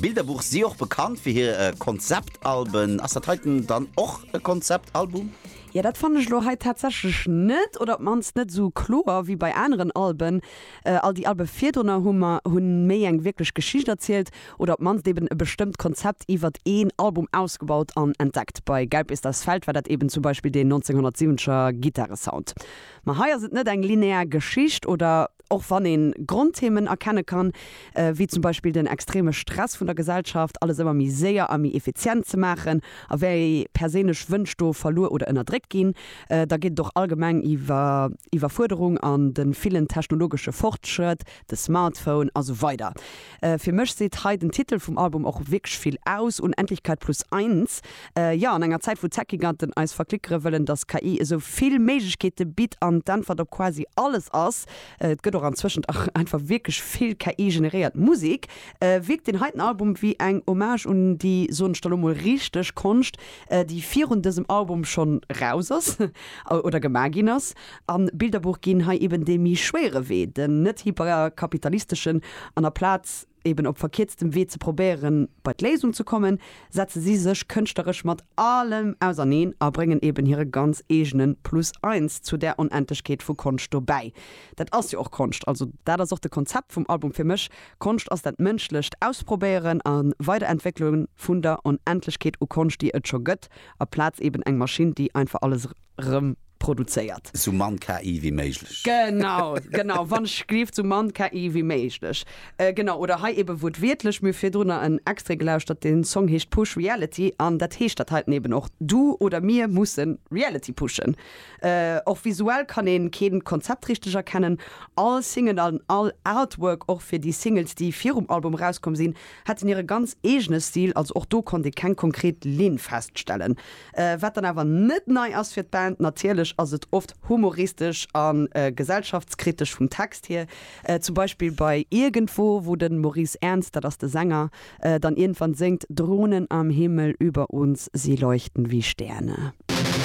Bilderbuch si och bekannt fir hir Konzeptalben. Ass dat heiten dann och e Konzeptalbum? Jo, dat fannen ech lo hei tatsächlech net, oder op d'mannst net esou kloer wéi bei aneren Alben. All déi Alben virdrunner hu mer hunn méi eng wierklech Geschicht erzielt, oder op d'mannst eben e bestëmmt Konzept iwwert een Album ausgebaut an entdeckt. Bei Gelb ist das Feld war dat eben zum Beispill deen 1970er Gittaresound. Ma hei ass et net eng linear Geschicht, oder? Och wann ee Grondthemen erkenne kann, wéi zum Beispill den extreme Stress vun der Gesellschaft, alles ëmmer méi séier a méi effizient ze maachen a wéi perséinlech Wënsch do verluer oder ënnerdréckt ginn, da geet et och allgemeng iwwer Iwwerfuerderung an de villen technologesche Fortschrëtt, de Smartphone a sou weider. Fir mech seet hei den Titel vum Album och wierklech vill aus, Unendlichkeit plus eins. Jo, an enger Zäit wou d'Techgiganten eis verklickere wëllen, dass KI esou vill Méiglechkeete bitt an d'Äntwert op quasi alles ass, et gëtt och antwëschent einfach wierklech vill KI-generéiert Musek, wierkt deen heiten Album wéi eng Hommage un déi, soen ech da lo mol, richteg Konscht, déi virun dësem Album schonn raus ass oder gemaach ginn ass. An Bilderbuch ginn hei eben dee méi schwéiere Wee, den net hyperkapitalisteschen, an a Plaz eben op verkierztem Wee ze probéieren bei d'Léisung ze kommen, setze si sech kënschtleresch mat allem auserneen a bréngen eben hire ganz eegene Plus eins zu där Onendlechkeet vu Konscht dobäi. Dat ass jo och Konscht, also dat ass och de Konzept vum Album fir mech, Konscht ass dat mënschlecht Ausprobéieren a Weiderentwéckele vun der Onendlechkeet u Konscht déi et scho gëtt, a Plaz eben eng Maschinn déi einfach alles rëm produzéiert. Sou mann KI wéi méiglech. Genau, genau, wann ech gleeft, sou mann KI wéi méiglech. Genau, oder hei eben wuertwiertlech, mir hu virdrunner en Extrait gelauschtert, den Song heescht Push Reality, an dat heescht dat heiten eben och, du oder mir mussen Reality pushen. Och visuell kann een keen Konzept richteg erkennen, all Single an all Artwork, och fir déi Singles déi virum Album erauskomm sinn, hätten hire ganz eegene Stil, also och do konnt ee keng konkret Linn feststellen. Wat dann awer net nei ass fir d'Band, natierlech ass et oft humoristesch a gesellschaftskritesch vum Text hier. Zum Beispill bei Irgendwo, wou de Maurice Ernst, dat ass de Sänger, dann iergendwann séngt, Drohnen am Himmel über uns, sie leuchten wie Sterne.